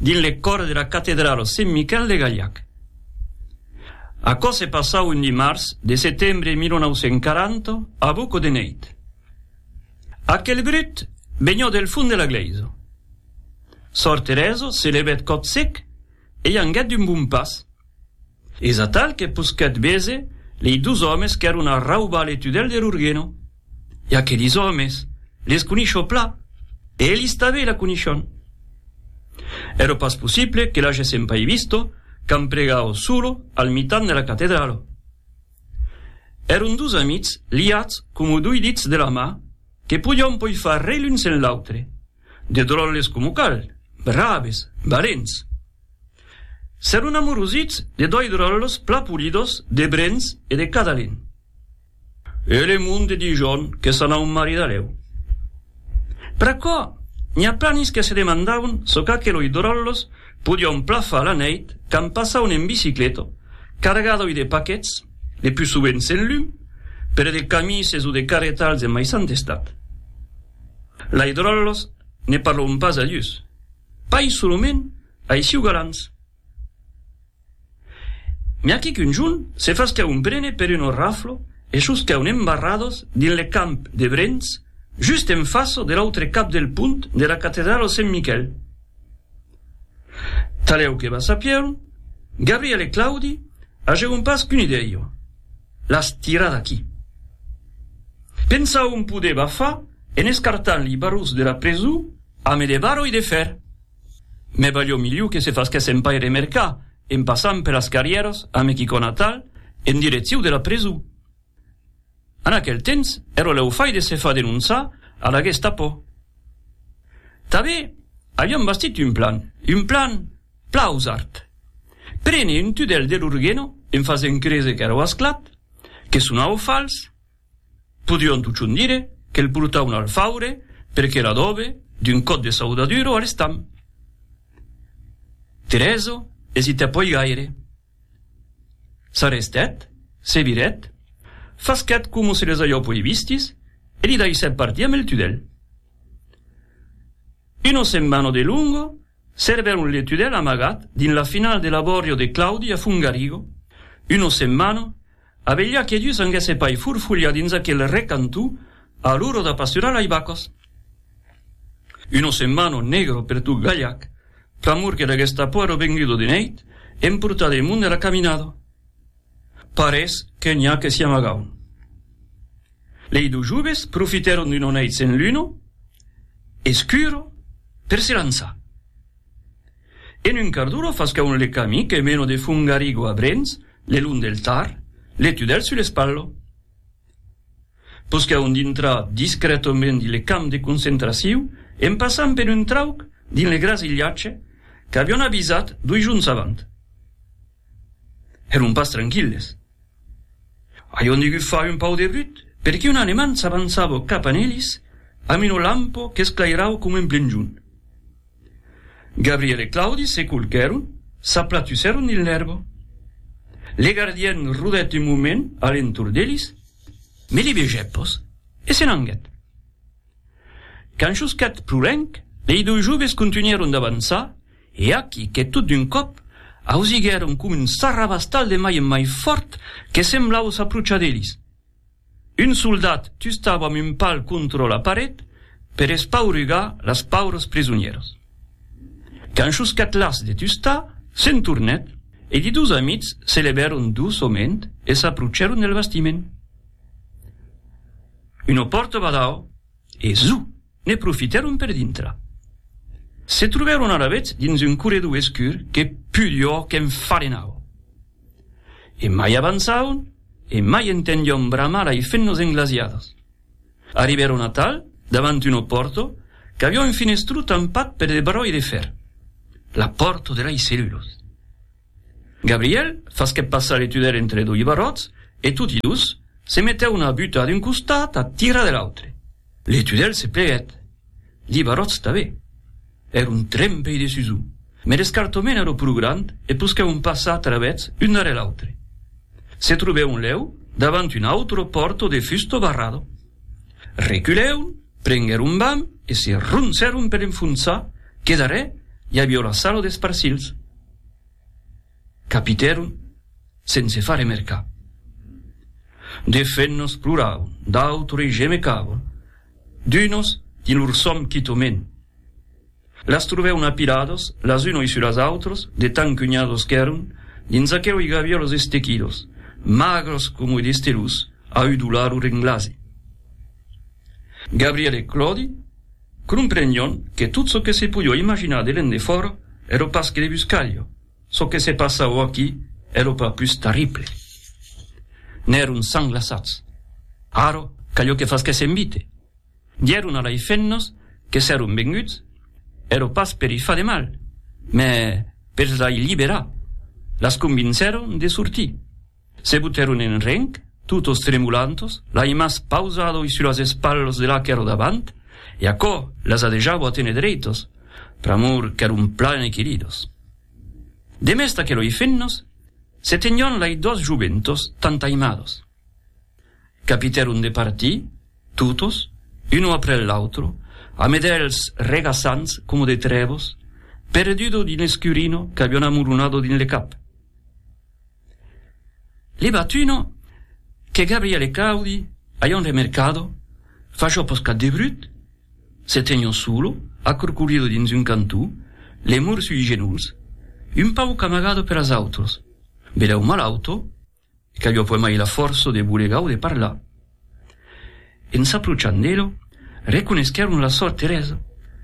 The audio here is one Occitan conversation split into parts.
dins le còr de la catedrala Sent Miquel de Galhac. Aquò se passau un dimars de setembre 1940 a buco de neit. Aquel brut venhó del fond de la glèisa. Sòr Teresa se levèt còp sec e i anguèt d'un bon pas. Es atal que posquèt véser lei dus òmes qu'èron a raubar le tudèl der Urgeno. E aquelis òmes, les conisho pla, e elis tabé la conishon. Ero pas possible que l'agèssen pai visto quand pregavo solo al mitan de la catedralo. Èron dus amics liats como dui dits de la mà que podion poi far rei l'un sen l'autre. De dròlles coma cal, braves, valents. S'èron amorosits de doi dròlles plan polidos de brens e de cadalen. E le monde Dijon que s'anau maridalèu. Pr'aquò, n'i a planis que se demandaun çò qu'aqueloi dròlles podion plan far la nèit quand passaun en bicicleta, cargadoi de paquets, le pus sovent sen lum, pere de camises o de carretals en maissant estat. Lai dròllos ne parlon pas a Dius, pas solament ai siu galants. Mès aquí qu'un jon se fasca un prene per un orraflo e sosca un embarrados dins le camp de Brens, just en faço de l'autre cap del pont de la catedralo Sent Miquèl. Talèu que va sapièron, Gabriel e Claudi agèron pas qu'una idèia, las tirar d'aquí. Pensaun poder bafar en escartant li barrus de la presu ame de barro e de fèr. Mès balhó miliu que se fasquèssen pas remercar en passant per las carrièras ame quicòna tal en direcciu de la presu. En aquel temps, ero lèu fai de se far denonçar a la Gestapo. Tanben avián bastit un plan, un plan plausart. Prene un tudèl de lor geno en fasent créser qu'èreu asclat, que sonàveu fals, podrián totjorn dire que'l portauen al faure per que l'adòbe d'un còp de saudadura a l'estam. Terezo esitè pòi gaire. S'arrestèt, se virèt, fasquèt coma se les ajopo li vistis e li daissèt partir amb el tudèl. Una setmana de longo servèron le tudèl amagat dins la finala de l'abòrrio de Claudi a Fongarigo, una setmana A velha que dus anguèsse pas furfulhar dins aquel recanto a l'ora de pasturar lei vacas. Uno semmano negro per tot Galhac, pr'amor que deguèsse tapuar lo vengudo de neit e emportar de monde la caminada. Parés que n'i a que s'i amagaun. Lei dus joves profitèron d'uno neit sen luna, escuro, per se lançar. En un quart d'ora fas caun le cami que meno de Fungarigo a Brens, le long del Tar, le tudèl sul espallo. Pus caun dintrar discrètament dins le camp de concentraciu en passant per un trauc dins le grasilhatge qu'avion avisat dui jorns avant. Èron pas tranquilles. Avion degut far un pau de brut perque un Alemand s'avançava cap a Nelis amb una lampo qu'esclairava coma un plenjon. Gabriel e Claudi se colquèron, s'aplatusèron dins l'èrba. Le gardien rodèt un moment a l'entorn d'eles, ne li vegèt pas e se n'anguèt. Quand chusquèt pro lenc, lei doi joves contunhèron d'avançar e aquí que tot d'un còp ausiguèron com un sarrabastal de mai en mai fòrt que semblava s'aprochar d'eles. Un soldat tustava amb un pal contra la paret per espaurugar las paures prisonieras. Quand Chuscat-las de tustar, se'n tornèt e li dos amics se levèron doçament e s'aprocèron del bastiment. Una pòrta badau e zu! Ne profitèron per dintra. Se trobèron alavetz dins un corredor escur que pudor qu'enfadenava. E mai avançavan e mai entendión bramar lai fennos englasiadas. Arribèron atal davant una pòrta qu'aviá un finestró tampat per de barròi de fèr. La pòrta de lai cellulas. Gabriel fasquèt passar le tunèl entre doi barròts e toti dus se metèu una buta d'un costat a tira de l'autre. Le tunèl se pleguèt, li barròts tanben. Èra un trempei de susur, mai l'escartament èra pro grand e posquèron passar a travèths un darrèr l'autre. Se trobèron lèu davant un autro pòrto de fusto barrado. Reculèron, prenguèron vam e se roncèron per enfonsar que darrèr i avió la salo des parcilhs. Capitèron sense far remercar. De fenos ploravan, d'autres gemecavan, d'unos dins lor sòm quitament. Las trobèron apiladas las unoi sus las autras de tan cunhadas qu'èron, dins aqueroi qu'aviá los estequidos, magras comoi de stelus, a udolar o renglasi. Gabriel e Claudi. Cromprenion que tot çò que se polhó imaginar de l'endefòra èro pas que de buscalha, çò que se passahó aquí èro pas pus tarrible. N'èron sanglaçats. Ara, calhó que fasquèssen vite. Dieron a lei femnas que s'èron venguts, èro pas per i far de mal, mès pels lei liberar. Las convincèron de sortir. Se butèron en renc, totos tremolantos, l'aimas pausado-i sus las espalhas de la qu'èra davant, e aquò las adejavo a téner dreitos, pr'amor qu'èron plan equilidos. Demest aqueloi fennos, se tenion lai dos joventos tant aimados. Capitèron de partir, totos, uno après l'autro, a medèls regaçants coma de trèvos, perdudo dins l'escurino qu'avion amoronado dins le cap. Li batuno que Gabriele Claudi a ion remercado, facho poscat de brut, se tegno solo, acurcolido dins un cantó, le mur sui genolhs, un pauc amagado per as autros, belèu malauto, e qu'avió puèi mai la fòrça de bolegar o de parlar. En s'approchant d'elo, reconeschèron la sòr Teresa,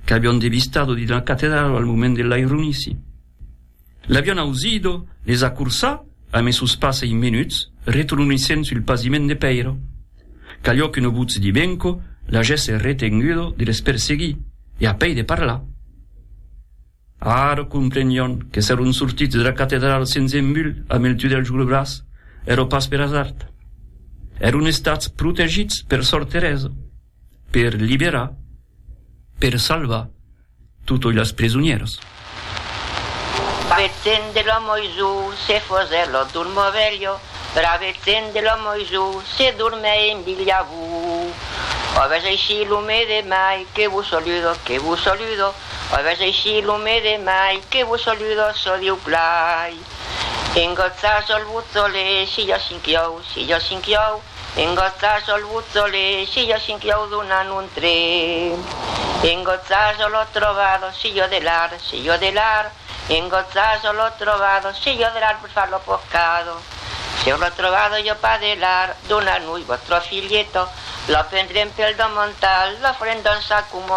qu'avián devistado dins la catedrala al moment de l'aironici. L'avián ausido desacorsar amb es sos passes menuts retronissent sul pasiment de pèira. Calhó qu'un votz dibenco l'agèsse retengudo de les perseguir e a pei de parlar. Ara comprenion que s'èron sortits dera catedrala sens embut amb el tudèl jo le braç, èra pas per asard. Èron estats protegits per Sòr Teresa, per liberar, per salvar totoi las presonieras. Bravèthent de lo Moisu se fosèt lo dormò velho, bravèthent de lo Moisu se dormè en bilha vou. Òbes aicí lo me demai, que vos soludo, que vos soludo, Aguest aicí lo mes de mai que vos saluda çò Dieu plai. En gatza sol vos olé si ja cinquiau, si ja cinquiau, en gatza sol vos olé si ja cinquiau donant un tré. En gatza sol ò trobat si jo de l'ar, si jo de l'ar, en gatza sol ò trobat si jo de l'ar per far lo pocado. Si ò l'ò trobat jo pas de l'ar, dona-nui vòstra filheta, la pendrem pel damantal, la farem dançar coma